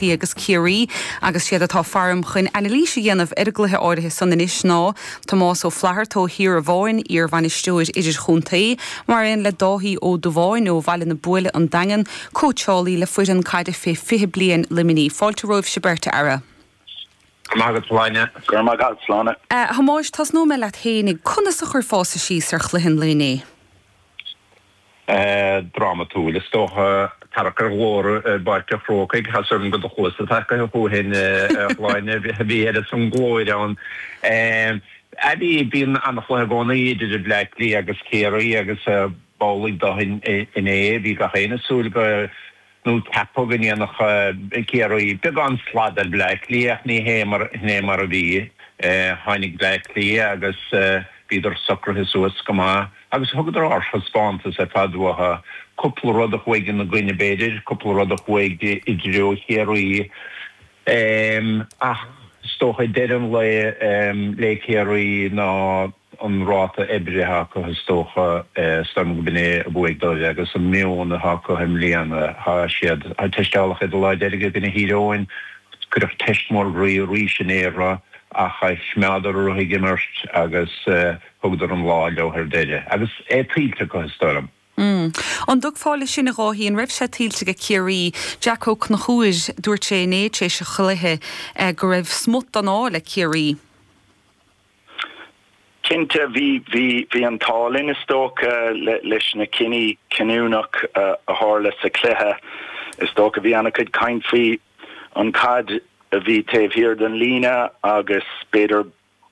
Cliath agus Ciarraí agus siad atá faram chun anailís a dhéanamh ar an gcluiche áirithe san anois ná Tomás Ó Flatharta ó Thír Abháin, iarbhainisteoir idirchontae, mar aon le Dáithí Ó Dubháin ó Bhaile na Buaile, An Daingean, cóitseálaí le foireann caide fé 20 bliain Luimnigh. Fáilte romhaibhse beirt, a fheara. Go raibh maith agat, Sláine. Go raibh maith agat, Sláine. A Thomáis, tosnóidh mé leat fhéinig. Conas a chuirfeása síos ar chluiche an lae inné? drámatúil. Is dócha, tarrac ar ghlór i bPáirc an Chrócaigh, has orm go do chluasa tacaithe thú fhéin a Shláine, a bhí ar a son glóir ann. Ach bí, bíonn an-chluiche i gcónaí idir Bleá Cliath agus Ciarraí agus b'amhlaidh dóibh inné. Bhí gach éinne ag súil go. nó ceapadh go ndéanfadh Ciarraí beagán slad ar Bhleá Cliath ach ní hé mar a bhí. Tháinig Bleá Cliath agus bhíodar socraithe suas go maith agus thugadar ardthaispeántas ar fad uathu, cúpla rud a chuaigh ina gcoinne b'fhéidir, cúpla rud a chuaigh i dtreo Chiarraí ach is dócha i deireadh an lae le Ciarraí ná. an ráta oibrithe acu is dócha, is dóigh liom gurb in é a bhuaigh dóibh agus an meon atá acu i mbliana, tá siad teisteáladh iad an lá deiridh i gcoinne Thír Eoghain, cuireadh teist mór groí arís inné orthu ach choimeádadar orthu ag imirt agus thugadar an lá leo ar deireadh agus é tuillte acu is dóigh liom. An dtiocfá leis sin, a Dháithí, an raibh sé tuillte ag Ciarraí? Jeaic Ó Conchúir, dúirt sé inné tar éis an chluiche go raibh smut den ádh le Ciarraí. Cinnte, bhí, bhí, bhí an t-ádh linn is dócha le, leis na cinní cinniúnach a tharla sa chluiche. Is dócha bhí ana-chuid caint faoi an caid a bhí taobh thiar den líne agus b'fhéidir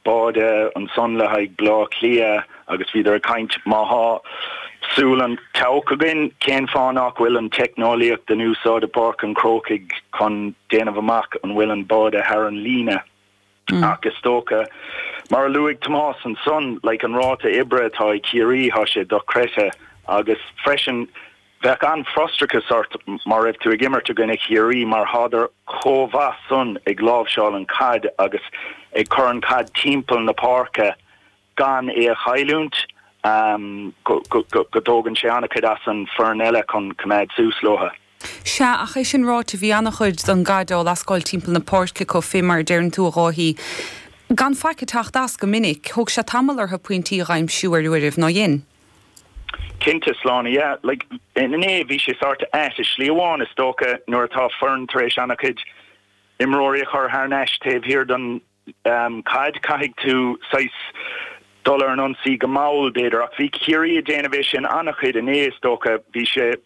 báide ansan le haghaidh Bleá Cliath agus bhíodar ag caint má thá súil an tseabhaic againn cén fáth nách bhfuil an teicneolaíocht in úsáid i bPáirc an Chrócaigh chun déanamh amach an bhfuil an báide thar an líne. Ach is dócha, mar a luaigh Tomás ansan, like an ráta oibre atá ag Ciarraí, tá sé dochreidthe agus freisin bheadh an-fhrustrachas ort má raibh tú ag imirt i gcoinne Chiarraí mar thádar chomh mhaith san ag láimhseáil an chaid agus ag cur an chaid timpeall na páirce gan é a chailliúint, go dtógann sé an-chuid as an foireann eile chun coimeád suas leotha. Sea, ach é sin ráite, bhí an-chuid don gcaid á lascáil timpeall na páirce, chomh, fé mar a deireann tú, a Dháithí, gan faic ag teacht as, go minic. Thóg sé tamall ortha pointí a dh'aimsiú ar uairibh, ná dhein? Cinnte, Sláine, yeah, like, inné bhí sé sort of ait, i slí amháin, is dócha, nuair atá foireann tar éis an-chuid imreoirí a chur thar n-ais taobh thiar don, Caid, caithfidh tú saghas dul ar an ionsaí go mall, b'fhéidir, ach bhí Ciarraí ag déanamh é sin an-chuid inné, is dócha. Bhí sé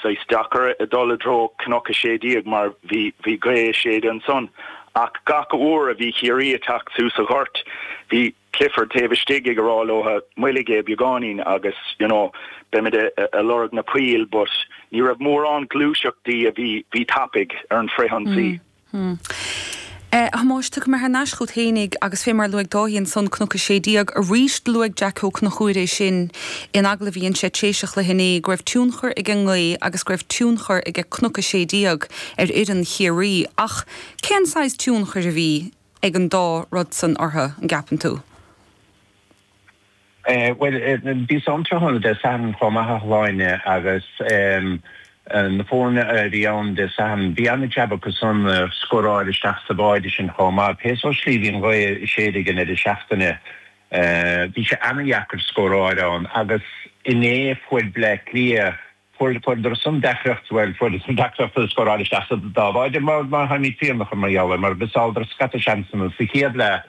saghas deacair a dhul i dtreo Cnoc 16 mar bhí bhí gaoth ag séideadh ansan ach gach uair a bhí Ciarraí ag teacht thuas sa ghort bhí Clifford taobh istigh ag rá leo moillig é beagáinín agus you know beimid a a lorg na poill but ní raibh mórán gluaiseachtaí a bhí bhí tapaidh ar an frithionsaí. Hm. A Thomáis, tiocfaidh mé thar n-ais chugat fhéinig agus fé mar a luaigh Dáithí ansan, Cnoc a Sé Déag, arís do luaigh Jack Ó Cnocúir é sin in agallaimh inse tar éis an chluiche inné go raibh tionchar ag an ngaoth agus go raibh tionchar aige Cnoc a Sé Déag ar fhoireann Chiarraí ach cén saghas tionchair a bhí ag an dá rud san orthu, an gceapann tú? Bhuel, bhíos ann tráthnóna Dé Sathairn chomh maith, a Shláine, agus na foirne a bhí ann Dé Sathairn, bhí an-jab acusan a scóráil isteach sa bháide sin chomh maith. Pé sórt slí a bhí an ghaoth ag séideadh i ndeireadh seachtaine, bhí sé ana-dheacair scóráil ann agus inné fuair Bleá Cliath, fuair, fuaireadar san deacracht, bhuel, fuaireadar san deacracht a scóráil isteach sa dá bháide mar tháimid fiafraithe mar gheall air mar mhissáileadar scata seansanna sa chéad leath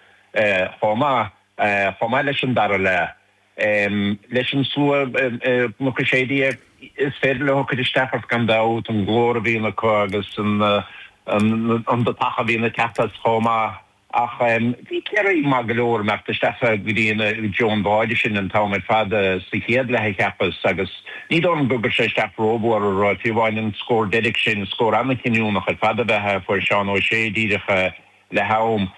chomh maith. chomh maith leis an dara leath. Leis an slua i gCnoc a Sé Déag is féidir leo cur isteach ort gan dabht, an glór a bhíonn acu agus an tacaíocht a bhíonn ag teacht as chomh maith. Ach bhí Ciarraí maith go leor imeacht isteach go dtí i dtreo an bháide sin an t-am ar fad sa chéad leath a cheapas agus ní dóigh liom gur chuir sé isteach rómhór orthu, fiú amháin an scór deiridh sin. Scór an-chinniúnach ar fad ab ea é a fuair Seán O'Shea díreach le ham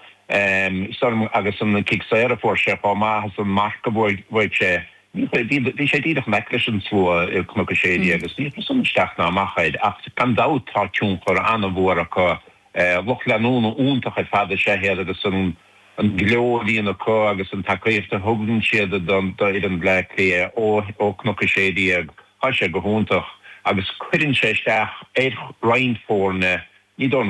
sosa, agus an cic saor a fuair sé chomh maith is an marc a bhuaigh sé. Bhí sé díreach in aice leis an slua i gCnoc a Sé Déag agus níor chuir san isteach ná amach air ach gan dabht tá tionchar an-mhór acu. Lucht leanúna iontach ar fad is ea iad agus an gleo a bhíonn acu agus an tacaíocht a thugann siad d'fhoireann Bhleá Cliath ó Chnoc a Sé Déag tá sé go hiontach agus cuireann sé isteach ar roinnt foirne, ní dóigh liom